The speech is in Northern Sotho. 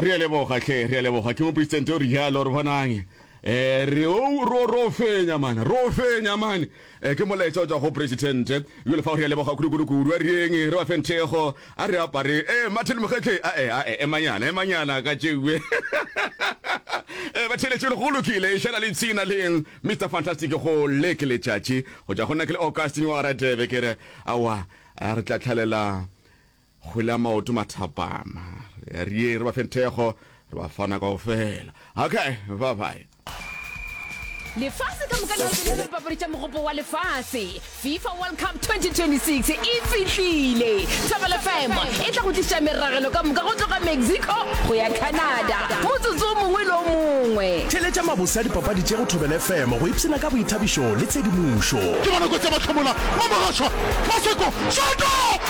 re a leboga hle re a leboga ke mopresidente o re jalo re bonang eh re o ro ro fenya mana ro fenya mane eh ke molaetsa o tswa go president yo lefa re leboga kudu kudu kudu a reng re ba fenthego a re apare eh mathele mogetle a eh a eh manyana e manyana ka tšewe eh ba tšheletse le go lokile e šala le tsina leng Mr Fantastic go leke letšatši go ja go nna ke le Augustine wa ratebe ke re awa a re tla tlhalela Kgwele ya maoto mathapama. Re a rieng, re ba feng thekgo, re ba fana kao fela. Okay, bye-bye. Lefase ka moka le hateletse dipapadi tša Mogopo wa Lefase. FIFA World Cup 2026 e fihlile! Thobela FM e tla go tlišetša meragelo ka moka go tloga Mexico go ya Canada motsotso o mongwe le o mongwe. Theeletša mabose a dipapadi tše go Thobela FM go ipshina ka boithabišo le tshedimošo. Ke bona kotsi ya mahlomola, Mamogashoa, Maseko, Shoto!